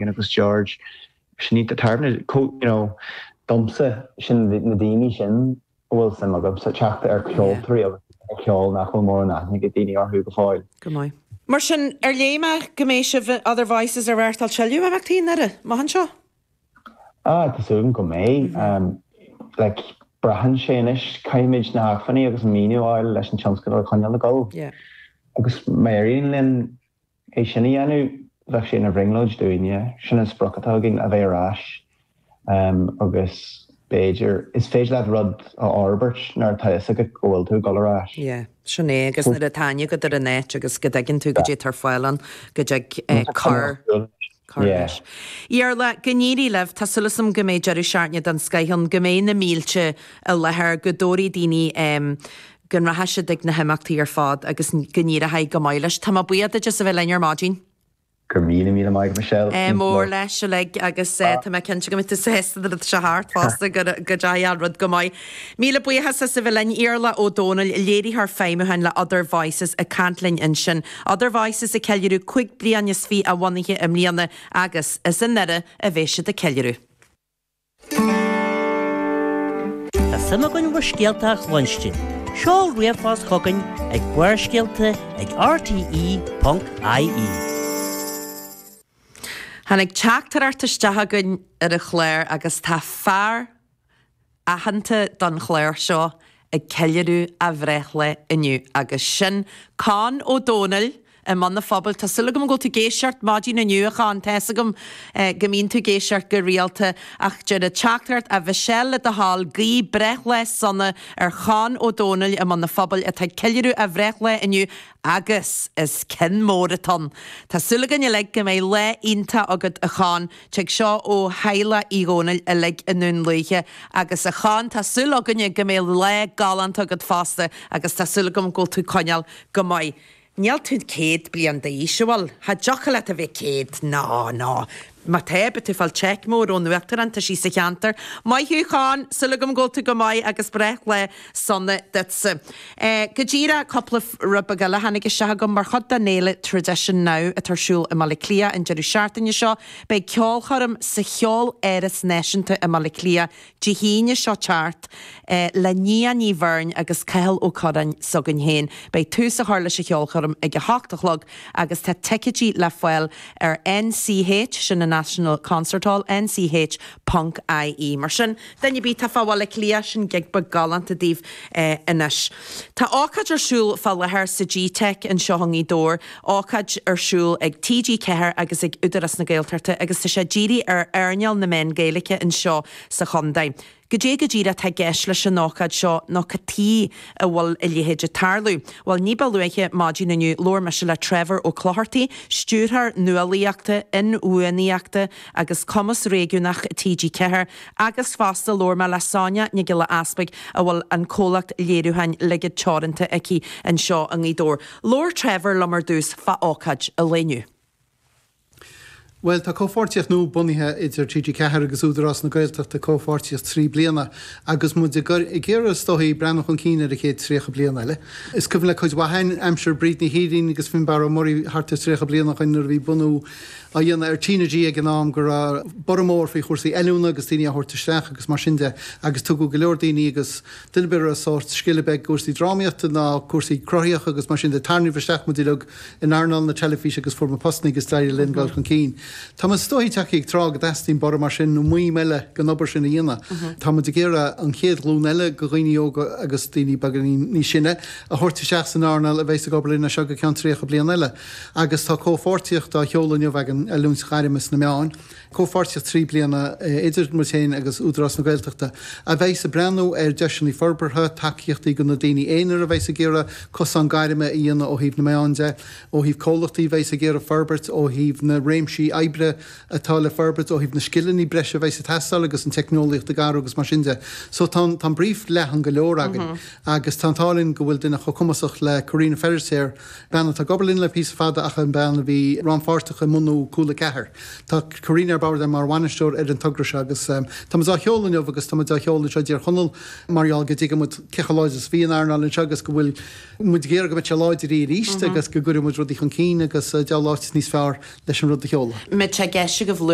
Eoin agus George, sin iad na tairbhne, you know. Domsa, sin na daoine sin a bhfuil suim agamsa teacht ar cheoltóirí agus ceol nach bhfuil mórán aithne ag daoine orthu go fóill. Go maith. Mar sin, ar léigh mé go mbeidh sibh in Other Voices ag reáchtáil tuilleadh imeachtaí i nDoire amach anseo? Ah, tá súil agam go mbeidh. Like, braitheann sé anois, caithfimid na hacmhainní agus an maoiniú a fháil leis an tionscadal a choinneáil ag dul. Yeah. Agus, má éiríonn linn, é sin a dhéanamh bheadh sé ina bhrionglóid dúinne. Sin an sprioc atá againn, a bheith ar ais agus b'fhéidir, is féidir leat rud a fhorbairt nuair atá fhios agat go bhfuil tú ag dul ar ais. Yeah, sin é agus nuair atá aithne agat ar an áit agus go dtuigeann tú cad é atá ar fáil ann, go dtig cur, cur leis. Iarla, go n-éirí libh, tá súil agam go mbeidh deireadh seachtaine den scoth ann, go mbeidh na mílte i láthair, go dtabharfaidh daoine, go rachaidh siad ag na himeachtaí ar fad agus go n-éireochaidh go maith leis. Tá mé buíoch duit as a bheith linn ar maidin. Go raibh míle maith agat Michelle. Ádh mór leis uilig agus tá mé cinnte go mbeidh tú sásta nuair atá sé thart fosta go dteachaidh an rud go maith. Míle buíochas as a bheith linn. Iarla Ó Dónaill, Léiritheoir Feidhmiúcháin le Other Voices ag caint linn ansin. Other Voices ag ceiliúradh cúig bliana is fiche a bhunaithe i mbliana agus is i nDoire a bheidh siad ag ceiliúradh. Tá suim againn in bhur scéalta a chluinstin. Seol ríomhphost chugainn ag barrscéalta ag rte.ie. Tháinig teachtaireacht isteach chugainn chun an chláir agus tá fear aitheanta don chlár seo ag ceiliúradh a bhreithlae inniu agus sin Conn Ó Domhnaill i mBun an Phobail. Tá súil agam go bhfuil tú ag éisteacht ar maidin inniu a Chonn, tá fhios agam go mbíonn tú ag éisteacht go rialta ach deir an teachtaireacht a Mhichelle le do thoil, guigh breithlá sona ar Chonn Ó Domhnaill i mBun an Phobail atá ag ceiliúradh a bhreithlae inniu agus is ceann mór atá ann. Tá súil againn uilig go mbeidh lá iontach agat a Chonn. Tig seo ó theaghlach Uí Dhónaill uilig i nDún Lúiche agus a Chonn, tá súil againne go mbeidh lá galánta agat fosta agus tá súil agam go bhfuil tú coinneáil go maith. Níl tú céad bliain d'aois an bhfuil? Cha dtiocfadh leat a bheith céad. Nó, nó má tá, beidh tú fáil cheque mór ón Uachtarán, tá sí sa cheantar. Maith thú, a Chonn, súil agam go bhfuil tú go maith agus breithlá Sona duitse. Eh, go díreach, cúpla rud beag eile a tháinig isteach chugam. Mar chuid den fhéile Tradition Now atá ar siúl i mBaile Átha Cliath an deireadh seachtaine seo, beidh ceolchoirm sa Cheoláras Náisiúnta i mBaile Átha Cliath Dé hAoine seo teacht, eh, le Nia Ní Bheirn agus Cathal Ó Curráin s'againn féin. Beidh tús á chur leis an cheolchoirm ag a hocht a chlog agus tá ticeidí le fáil ar NCH, sin an National Concert Hall, NCH, ponc. ie. Mar sin duine ar bith atá fá Bhaile Átha Cliath, sin gig beag galánta daoibh anois. Tá ócáid ar siúl fá láthair sa G-Teic anseo i nGaoth Dobhair, ócáid ar siúl ag TG4 agus ag Údarás na Gaeltachta agus tá sé dírithe ar earnáil na meán Gaeilice anseo sa chondae. Goidé go díreach tá i gceist leis an ócáid seo nó cad tuighe a bhfuil a leithéid ag tarlú? Bhuel ní ba luaithe maidin inniu labhair mise le Trevor Ó Clochartaigh, Stiúrthóir Nuálaíochta, Inbhuanaíochta, agus Cumas Réigiúnach TG4 agus fosta labhair mé le Sonia Nic Giolla Easbuig a bhfuil an comhlacht léiriúcháin Ligid Teoranta aici anseo i nGaoth Dobhair. Labhair Trevor liom ar dtús fá ócáid an lae inniu. Bhuel tá comhpháirtíocht nua bunaithe idir TG4 agus Údarás na Gaeltachta, comhpháirtíocht trí bliana agus muid ag iarraidh is dóigh breathnú chun cinn ar an chéad 30 bliain eile. Is cuimhin le cuid mhaith againn aimsir Bríd Ní Shírín agus Fionnbarra Ó Muirí thart ar 30 bliain ó shoin nuair a bhí bunú á dhéanamh ar TnaG ag an am go raibh borradh mór faoi chúrsaí oiliúna agus daoine á thabhairt isteach agus mar sin de agus tugadh go leor daoine agus duine ar bith a raibh sórt scil ar bith i gcúrsaí drámaíochta ná cúrsaí cruthaitheacha agus mar sin de tarraingíodh isteach muid uilig in earnáil na teilifíse agus fuair muid postanna agus d'éirigh linn dul chun cinn. Tá muid is dóigh tagtha ag tráth go dteastaíonn borradh mar sin nó maidhm eile den obair sin a dhéanamh. Tá muid ag iarraidh an chéad ghlún eile de dhaoine óga agus daoine beagáinín níos sine a thabhairt isteach san earnáil a bheas ag obair linn as seo go ceann 30 bliain eile. Agus tá comhpháirtíocht á sheoladh inniu againn, oiliúint ghairme sna meáin, comhpháirtíocht trí bliana idir muid féin agus Údarás na Gaeltachta, a bheas ag breathnú ar deiseanna forbartha, tacaíochtaí do na daoine aonair a bheas ag iarraidh cosán gairme a dhéanamh ó thaobh na meán de, ó thaobh comhlachtaí a bheas ag iarraidh forbairt, ó thaobh na réimsí oibre atá le forbairt, ó thaobh na scileanna breise a bheas ag teastáil agus an teicneolaíocht ag athrú agus mar sin de. So tá an brief leathan go leor againn agus tá an t-ádh linn go bhfuil duine chomh cumasach le Karina Feirtéar, Bean atá ag obair linn le píosa fada ach bean a bhí rannpháirteach i mbunú Cúla 4. Tá Karina ar bord linn mar bhainisteoir ar an togra seo agus tá muid á sheoladh inniu agus tá muid á sheoladh anseo i dTír Chonaill mar gheall go dtuigeann muid cé chomh láidir is a bhí an earnáil anseo agus go bhfuil muid ag iarraidh go mbeidh sé láidir arís agus go gcuirfidh muid rudaí chun cinn agus diabhal áit níos fearr leis an rud a sheoladh. Mise ag ceistigh a bhluid.